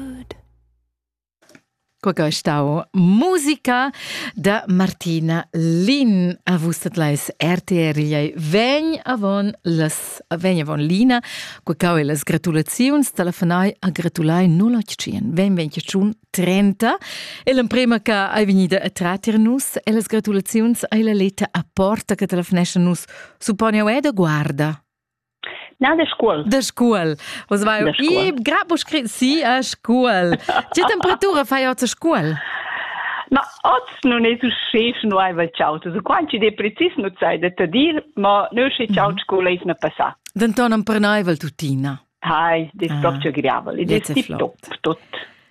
Good. Quei che è stau musica da Martina Lin a vus lais RTR Liei vegn avon las vegn avon Lina quei cau e las gratulaziuns telefonai a gratulai 081 20 30 e l'emprema che hai vegnida a tratter nus e las gratulaziuns ai la leta a porta che telefonesce nus supponi ed guarda Na, de Scuol. De Scuol. Was war de Scuol. Ich grad scrit sie a Scuol. Tge temperatura fai oggi a Scuol? Ma oz non è tu schef nu ai va ciao. Tu quanti de precis nu sai da te dir, ma nu sche ciao mhm. Scuol è na passà. Denton non pernaivel tuttina. Hai, de stop ah. ce griavel. De tip top, tot.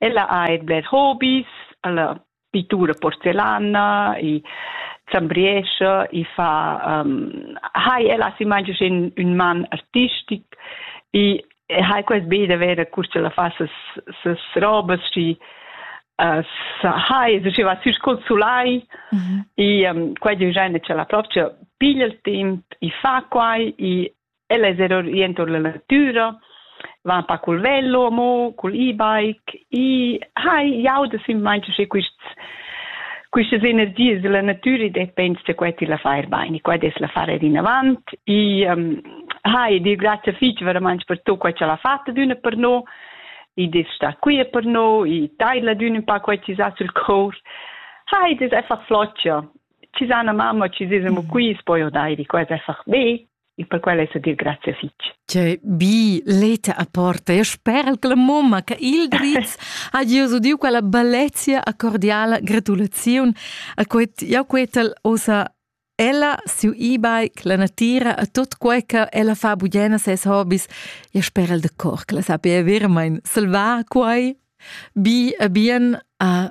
Ella ha eir bler hobis, la pittura porcellana, i zambriescha, i fa hai ella as imagi sün ün man artistic i hai quest be da verer cur cha la fa ses ses robas schi as hai es schi va sü sco'l sulai i quai di giain cha la propcha piglia il temp i fa quai i Ella es er orientur la natüra, van pa cul velo amo, cul e-bike. I hai jau da simmaint che quists Quistas energias della natüra depends da quai ti la fai bain, e qua des la far er inavant. E um, hai dir grazie fich veramente per tutto quai che l'ha fatto d'una per noi, e des sta qui per noi, e taila d'una un pa quai ci sa sul cor. Hai des einfach floccia. Ci sa una mamma, ci si siamo qui, poi o dai, quasi einfach be. e per quella è dir grazie fitg. Cioè, bi leta a porta e sper la mamma che il dritz ha Gesù diu quella bellezia a cordiala gratulazione a quet jau quetal osa ella siu ibai che la natira a tot quei che ella fa bugena ses hobbies e sper el de cor che la sappia vermain salvar quei bi a bien a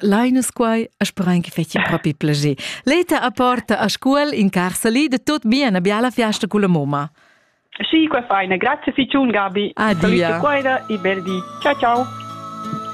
Lainas quai, a speran che feci propi plager. Leta a porta a scuol in carsali de tot bien a biala fiasta con la mamma. Sì, qua fai, grazie ficiun Gabi. Adia. Saluta quaida e bel di. Ciao ciao.